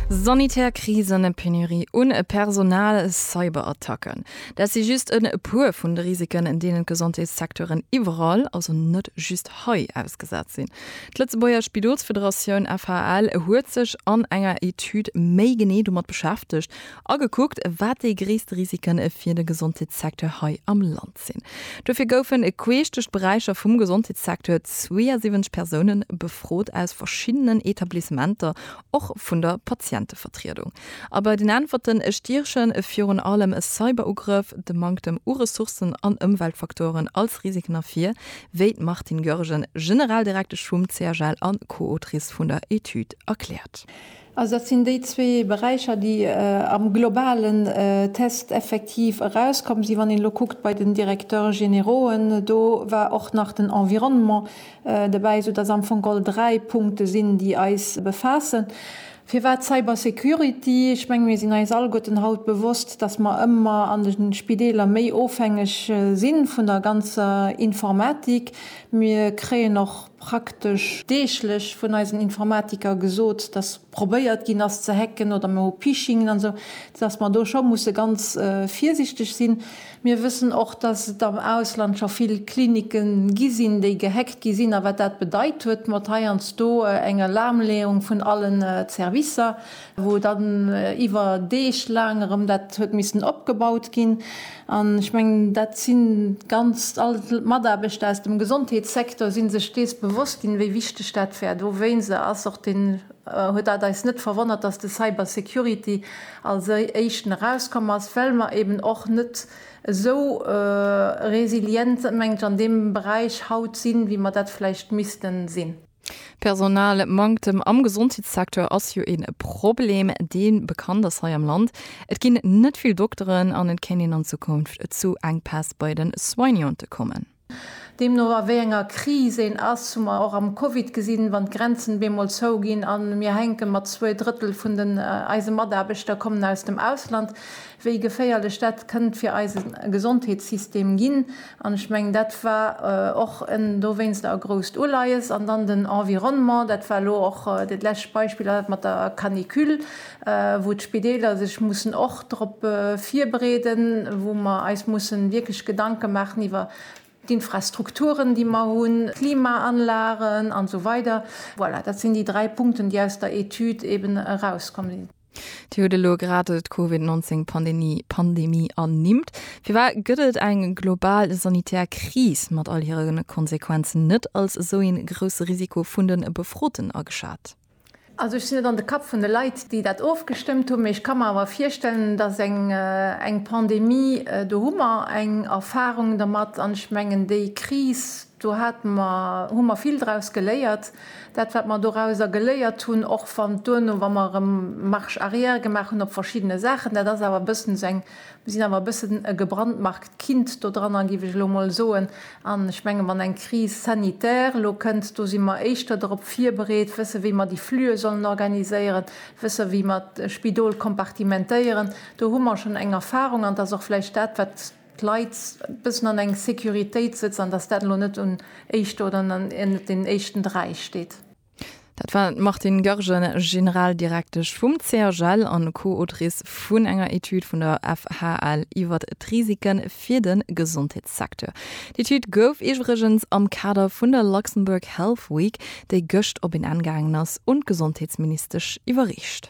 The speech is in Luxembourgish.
Sanitär Krisen, e Penurie un e Personal, Cyberattacken, dat si just e puer vun de Risiken, deenen d'Gesondheetssecteuren iwwerall, also net just hei, ausgesat sinn. D'Lëtzebuerger Spidolsfederatioun, FHL, huet sech an enger Etüd méi genee domat beschäftegt a gekuckt, wat déi gréisst Risiken fir de Gesondheetssecteur hei am Land. Stad sinn. Dofir goufen e queesch duerch d'Beräicher vum Gesondheetssecteur 72 Persoune befrot aus verschiddenen Etablissementer, och vun der Patientevertriedung. A bei den Äntwerten stiechen virun allem Cyberugrëff, de Manktem u Ressourcen an Ëmweltfaktoren als Risiken ervir, wéi d'Martine Goergen, Generaldirektesch vum CHL a Co-Autrice vun der Etüd, erkläert. Also dat sinn déi zwee Beräicher, déi am globalen Test effektiv erauskomm sinn. Wann een elo kuckt bei den Directeurs généraux'en, do war och nach den Environnement dobäi, esoudass am Fong all dräi Punkte sinn, déi eis befaassen. Firwat Cybersecurity? Ech menge mir sinn eis alleguerten haut bewosst, dass mer ëmmer an de Spideeler méi ofhängeg si vun der ganzer Informatik. Mir kréien och. praktesch deeglech vun eisen Informatiker gesot, dass probéiert ginn ass ze hacken oder mer hu Phishingen an esou, dass mer do scho musse ganz virsichteg sinn. Mir wëssen och, dass et am Ausland scho vill Klinike gi sinn, déi gehackt gi sinn a wat dat bedeit huet mat heiansdo eng Lahmleeung vun allen Servicer. wou dann iwwer Deeg laang erëm dat huet missen opgebaut ginn. An ech mengen, dat si ganz all d'Mataarbechter aus dem Gesondheetssecteur si sech dees bewosst ginn, wéi wichteg dat war. Dowéinst ass och den, huet dat eis net verwonnert, dass de Cybersecurity als Éischten erauskomm ass, well mer eeben och net esou resilient, menge ech, an deem Beräich haut sinn, wéi mer dat vläicht misste sinn. Personalmanktem am Gesondheetssecteur ass jo e Problem, dee bekannt ass hei am Land. Et ginn net vill Dokteren an et kéint een an Zukunft zu Enkpäss bei de Soignante kommen. Deemno a wéi enger Kris een ass, hu mer och am Covid gesinn, wann d'Grenzen op eemol zou ginn a mir hänke mat zwee Drëttel vun den eise Mataarbechter kommen aus dem Ausland, wéi geféierlech dat kënnt fir eise Gesondheetssystem ginn. An ech mengen, dat war och en dowéinster e grousst Uleies. An dann den Environnement, dat war elo och dat lescht Beispill, dat mat der Canicule, wou d'Spideeler sech mussen och drop virbereeden, wou mer eis musse wierklech Gedanke maachen iwwer d'Infrastrukturen, déi mer hunn, d'Klimaanlagen an esou weider. Voilà, dat sinn déi dräi Punkten, déi aus der Etüd eeben erauskomm sinn. Dir hutt elo grad d'Covid 19 Pandemie Pandemie ernimmt. Firwat gëtt et eng global sanitär Kris mat all hire Konsequenzen net als esou ee grousse Risiko vun de Befroten ageschat? Also ech sinn net an de Kapp vun de Leit, déi dat ofgestëmmt hunn, mee ech ka mer awer virstellen, datt eng eng Pandemie, do hu mer eng Erfarung domat an ech mengen déi Kris, Do hate mer, hu mer vill draus geléiert. Dat, wat mer dorauser geléiert hunn, och wann duerno, wa mer erëm Marche arrière gemaach hunn op verschiddene Saachen, dat ass awer e bëssen esou eng, mir sinn awer e bëssen e gebrandmarkt Kind dodranner, géif ech elo emol soen. An ech menge wann eng Crise sanitaire elo kënnt, do si mer éischter dorop virbereet, wësse wéi mer déi Flüe sollen organiséieren, wësse wéi mer d'Spidol kompartimentéieren. Do hu mer schonn eng Erfahrung an et ass och vläicht dat, wat, d'Leit e bëssen an eng Securitéit sëtzen an datt dat elo net un éischter oder un den éischten dräi steet. Dat war d'Martine Goergen, Generaldirektesch vum CHL a Co-Autrice vun enger Etüd vun der FHL iwwer d'Risike fir de Gesondheetssecteur. D'Etüd gouf iwwregens am Kader vun der Luxembourg Health Week, déi gëscht op een Enn gaangen ass, un d'Gesondheetsministesch iwwerreecht.